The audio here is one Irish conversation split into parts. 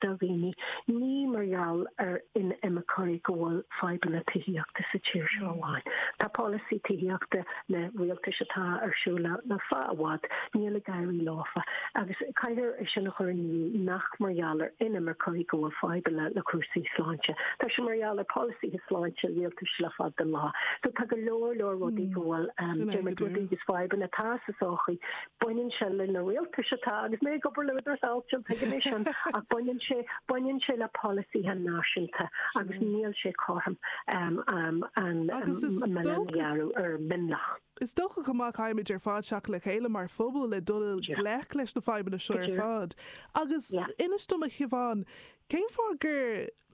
do dhaoine, ní mar gheall ar inimirceoirí go bhfuil fadhbanna tithíochta sa tír seo amháin. Tá polasaí tithíochta na rialtais atá ar siúl le fada an bhfad, níl ag éirí leofa, agus caithfear é sin a chur in iúl nach mar gheall ar inimirceoirí go bhfuil fadhbanna le cúrsaí sláinte, tá sé mar gheall ar pholasaithe sláinte rialtais le fada an lá. So tá go leor leor rudaí go bhfuil, déarfainn, rudaí agus fadhbanna atá sa sochaí. baineann sé le na rialtais atá, agus mé ag obair le hÚdarás Áitiúil tuigim é sin, ach baineann sé baineann sé le polasaithe náisiúnta agus níl sé cothrom um um an milleán a ghearradh ar mhionlach. Is dócha chomh maith caithfimid ar fad teacht le chéile mar phobal le dul i ngleic leis na fadhbanna seo ar fad agus inis dom a Shiobhán, cén fáth gur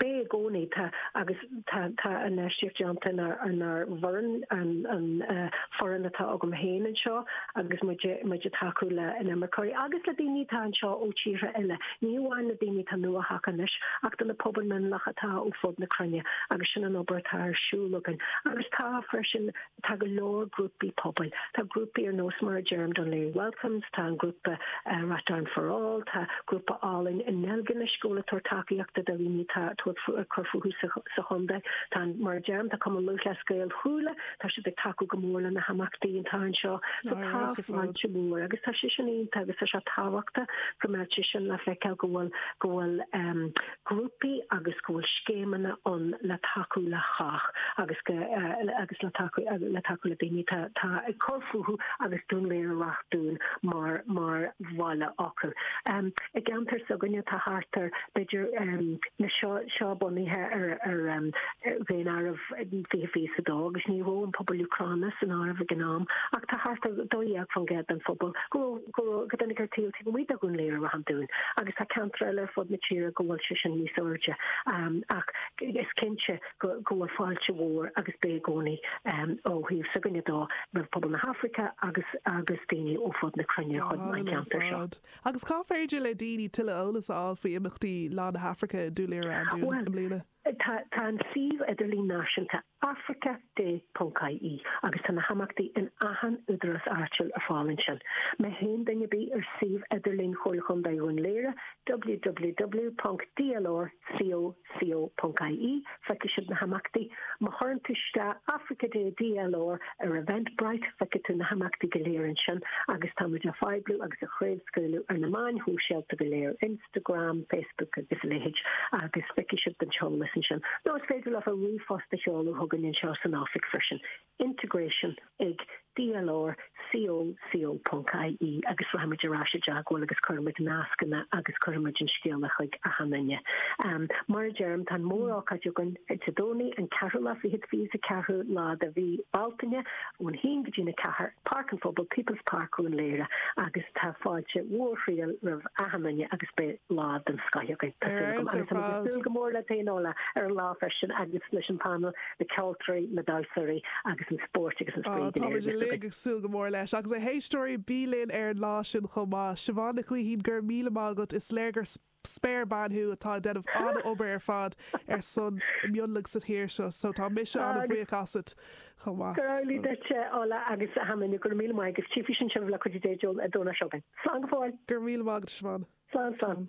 beidh i gcónaí, tá agus tá, tá an infheistíocht déanta inár bhfoireann, an foireann atá agam féin anseo agus muid, muid ag tacú le inimirceoirí agus le daoine atá anseo ó tíortha eile, ní amháin le daoine atá nuathagtha anois ach do na pobail mionlaigh atá ó fud na cruinne agus sin an obair atá ar siúl againn agus tá freisin. Tá go leor grúpaí pobail, tá grúpaí ar nós mar a deirim Dún Laoghaire Welcomes, tá an grúpa Rathdown for All, tá grúpa Álainn i nDeilginis go bhfuil ag tabhairt tacaíochta do dhaoine atá ag cur fúthu sa chontae. Tá, mar a deirim, tá Cumann Lúthchleas Gael Chuala, tá siad ag tacú go mór le na himeachtaí atá anseo. So tá fáilte mhór agus tá sé sin iontach agus tá sé tábhachtach go mbeadh sé sin le feiceáil go bhfuil, go bhfuil ehm, grúpaí agus go bhfuil scéimeanna ann le tacú le cách agus go agus le tacú le tacú le daoine atá atá ag cur fúthu agus Dún Laoghaire-Ráth an Dúin mar mar bhaile acu. I gceantar s'againne atá thart ar b'fhéidir na seo seo bunaithe ar ar ar Dhaonáireamh 2022 agus ní raibh an pobal Úcráineach san áireamh ag an am ach tá thart ar 12% den phobal go raibh a rugadh ar taobh taobh amuigh de Dhún Laoghaire Ráth an Dúin agus tá ceantair eile ar fud na tíre go bhfuil sé sin níos airde ach is cinnte go bhfuil fáilte mhór agus beidh i gcónaí ó thaobh s'againne de roimh phobal na hAfraice agus agus daoine ó fud na cruinne chun an ceantar seo. Agus cá féidir le daoine tuilleadh eolais a fháil faoi imeachtaí Lá na hAfraice i nDún Laoghaire-Ráth an Dúin i mbliana? Tá an suíomh idirlín náisiúnta africaday.ie agus tá na himeachtaí in achan údarás áitiúil ar fáil ansin. Má théann duine ar bith ar suíomh idirlín Chomhairle Chontae Dhún Léire, www.dlrcoco.ie, feicfidh siad na himeachtaí. Má chuireann tú isteach Africa Day DLR ar Eventbrite, feicfidh tú na himeachtaí go léir ansin agus táimid á phoibliú agus á chraobhscaoileadh ar na meáin shóisialta go léir in. Instagram, Facebook agus a leithéid agus feicfidh sibh an t-eolas ansin. Nó is féidir libh a ríomhphost a sheoladh chugainn anseo san oifig freisin, integration ag dlr co co. ie agus rachaidh muid ar ais i dteagmháil libh agus cuirfidh muid nascanna agus cuirfidh muid an scéala chuig achan duine. Mar a deirim, tá an mór-ócáid againn Dé Domhnaigh an ceathrú lá fichead, 24ú lá de mhí Bealtaine. ón haon go dtí'n a ceathair, Páirc an Phobail, People's Park Dhún Léire agus tá fáilte mhór fhial roimh achan duine agus beidh lá den scoith againn tá súil agam agus tá muid ag súil go mór le Tain Ola ar an lá freisin agus leis an panel, na ceoltóirí, na damhsoirí agus an spórt agus an spraoi go léir. Tá muid uilig ag súil go mór leis agus a éisteoirí bí linn ar an lá sin chomh maith. Siobhán Nic Gaoithín, go raibh míle maith agat, is léir gur spéirbhean thú atá ag déanamh an-obair ar fad ar son na mionlach sa thír seo so tá mise an-bhuíoch asat chomh maith. Go raibh duit, a Ola, agus a Hammond, go raibh míle maith agus tíocfaidh sin sibh le cuid a dtéiteoil a dúnáis againn. Slán go fóill! Go raibh míle maith agat, a Shiobhán. Slán, slán.